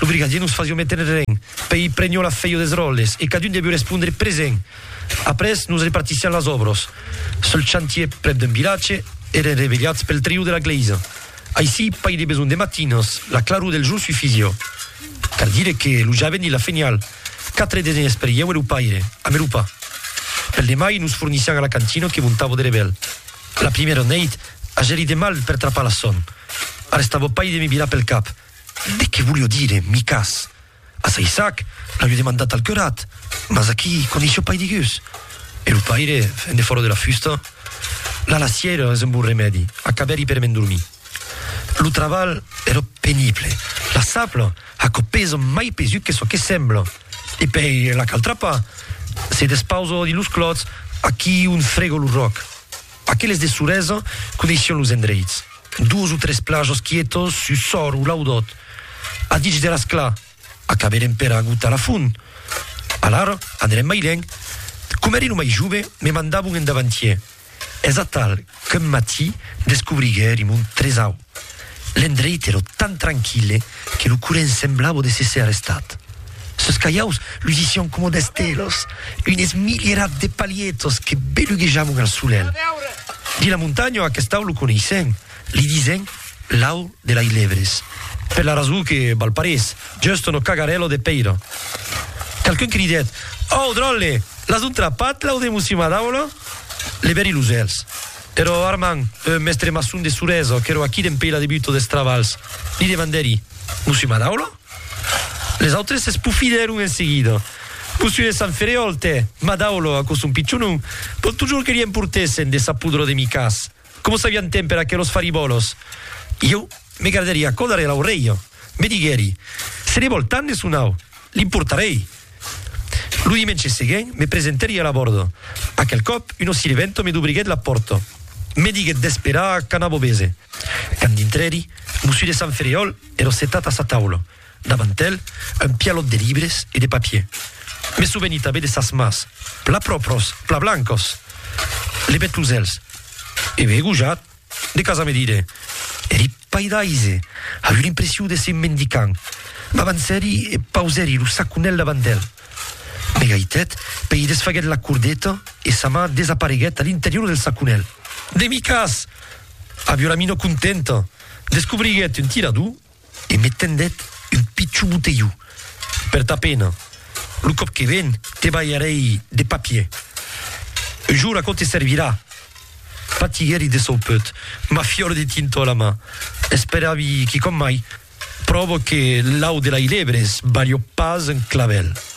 Lo brigadier nos fasió méter ren, pei prenió la fèio des ròles e cadun devió respondre present. Après nos repartissián las òbros. Sul chantier prèp d'un vilatge, èren revelhats pel triu de la glèisa. Aicí, pas de besonh de matinas, la claror del jorn sufissió. Cal dire que lo javent i la fenial, quatre des nenes per ieu e lo paire, a Merupa. Pel demai nos fornissián a la cantina que montavo de Revel. La primièra neit, agèri de mal per trapar la son. Arrestavò pas de me virar pel cap. De qué volíeu dire, Micas? A Saissac l'aviu demandat al curat, mas aquí coneishió pas digús. E lo paire, fent de fòro de la fusta, La lassièira es un bon remèdi, acabèri per m'endormir. Lo trabalh èra penible, la sapla aquò pesa mai pesut que çò que sembla. E pèi la cal trapar, se despausar dins los clòts, aquí ont frega lo ròc. Aqueles de Suresa coneission los endreits. Dos o tres plajos quietos sus Sòr o Laudòt. A dich de Rasclà, acaberem per agotar la font. Alara, anerem mai lènh. Coma ère lo mai jove, me mandabon en davantièr. Es atal qu'un matí descobriguèrim un tresau. L'endreit èra tan tranquille que lo current semblava de se ser estat. Sos calhaus lusissián coma d'estelos, unes milierats de palietos que beluguejavan al solelh. Dins la montanha aqueste au lo coneissèn, li disen l'au de lei levres, per la rason que val parés just una cagarèla de pèira. Qualqu'un cridèt, Au, dròlle, l'as un trapat, l'au de Mossi Madaula? Levèri los elhs. Ero Armand, eth mèstre maçon de Surezo, qu'ero aquí dempèi la debuta des travalhs, li demandèri, Vos s'i Madaula? Les autres s'espofidèron en seguida. Mossionet de Sant Ferriòl, tè! Madaula, aquò son pichonon! Bon totjorn que li emportèssen de sa pudra de micas! Coma s'avián temps per aquelos faribòlos! Ieu me gardèri aquò darrèr l'aurelha. Me diguèri, Se ne vòl tant de son au! Li portarèi. Lo dimenge seguent, me presentèri a la bòrda. Aquel còp, una sirventa me dobriguèt la pòrta. Me diguèt d'esperar quand abobèse. Quand dintrèri, Mossú de Sant Ferriòl èra setat a sa taula. Davant el, un pialòt de libres e de papier. Me soveni tanben de sas mans, pla pròpras, pla blancas! Levèt los èlhs. Ève gojat. De casa me dire, eri paidaise, a eu l'impressiu d'èsser un mendicant. M'avancèri e pausèri lo saconèl davant d'el. Me gaitèt, pei desfaguèt la cordeta e sa man desapareguèt a l'interior del saconèl. Demicàs! A Violamino contenta, descobriguèt un tirador e me tendèt un pichon botelhon. Per ta pena, lo còp que ven te balharèi de papier. Un jour aquò te servirà. Patiguèri de son pèut, ma fiòra de tintor a la man, esperavi quicòm mai, pròva que l'au de la ilèbre es balhò pas un clavèl.